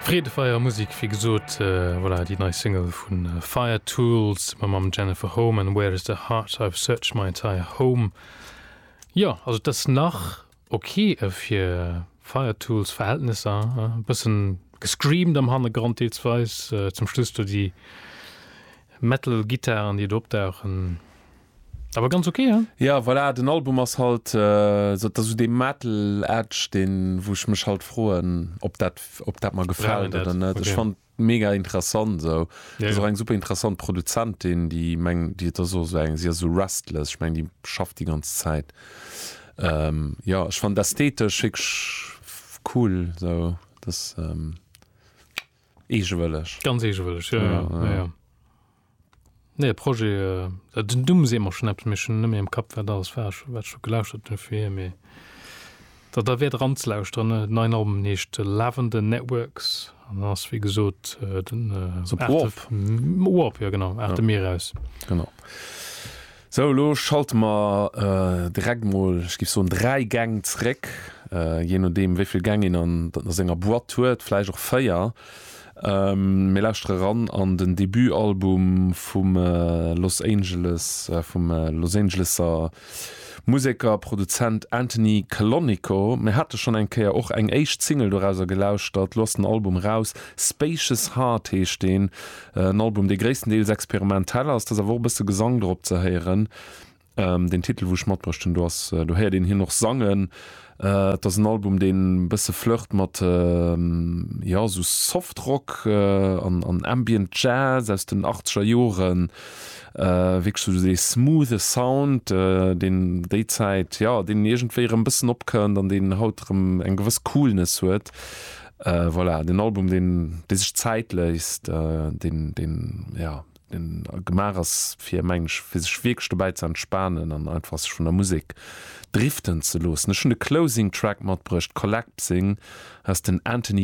Freedefeier Musik, wéi gesot, voilà, déi nei Single vu Fire Tool zesumme mam Jennifer Home an Where is the Heart, I've searched my entire home. Jo, also et ass nach ok fir Fire Tool Verhältnesser, e bëssen gescreamed am Hannergrond deelsweis, zum Schluss do déi Metal Gittaren, déi do opdauchen. Awer ganz ok, hein? Ja voilà, den Album ass halt sou, dass sou dee Metal Edge deen wou ech mech halt froen ob dat ob dat mer gefällt oder net. Ech fannt mega interessant sou. Et ass och eng super interessant Produzentin déi meng déi et ass och sou eng si ass sou restless, ech meng déi schafft déi ganz Zäit. Jo ech fannt ästhetesch wierklech cool sou, dass eegewëlleg. Ganz eegewëlleg, jo jo. Nee e Projet, äh, den Numm seet mer schonn eppes, mee ech hunn net méi am Kapp, wat alles war ech, wat ech do gelauschtert hunn fir hie. Mee da, da wäert eranzelauschteren. Den neien Album heescht Lavender Networks an ass wéi gesot den, äh, Op Warp. Warp, jo genau, Arte Mir aus. Genau. Sou, elo schalte mer direkt mol, ech géif soen, dräi Gäng zeréck, jee nodeem, wéi vill Gäng een an senger Boîte huet, vläicht och véier. Mir lauschtere eran an den Debutalbum vum Los Angeles, vum Los Angeleser Museker, Produzent Anthony Calonico. Mir hate schonn eng Kéier och eng éischt Single dorauser gelauschtert. Elo ass den Album eraus, Spacious Heart heescht deen, En Album, dee gréisstendeels experimentell ass. Et ass awer och e bësse Gesang drop ze héieren. Deen Titel, wou ech matbruecht hunn, do ass, do héiert een hien och sangen. Et ass en Album, deen e bësse flirt mat, jo, esou Softrock an Ambient Jazz aus den achtzeger Joren. Wierklech esou dee smoothe Sound, deen déi Zäit, jo, deen iergendwéi erëm e bëssen opkënnt an deen haut erëm eng gewëss Coolness huet. Voilà, den Album deen sech Zäit léisst, deen ja gemaach ass fir meng ech fir sech wierklech dobäi ze entspanen an einfach sech vun der Musek driften ze loossen. Ech hunn de Closing Track matbruecht, Collapsing aus den Anthony.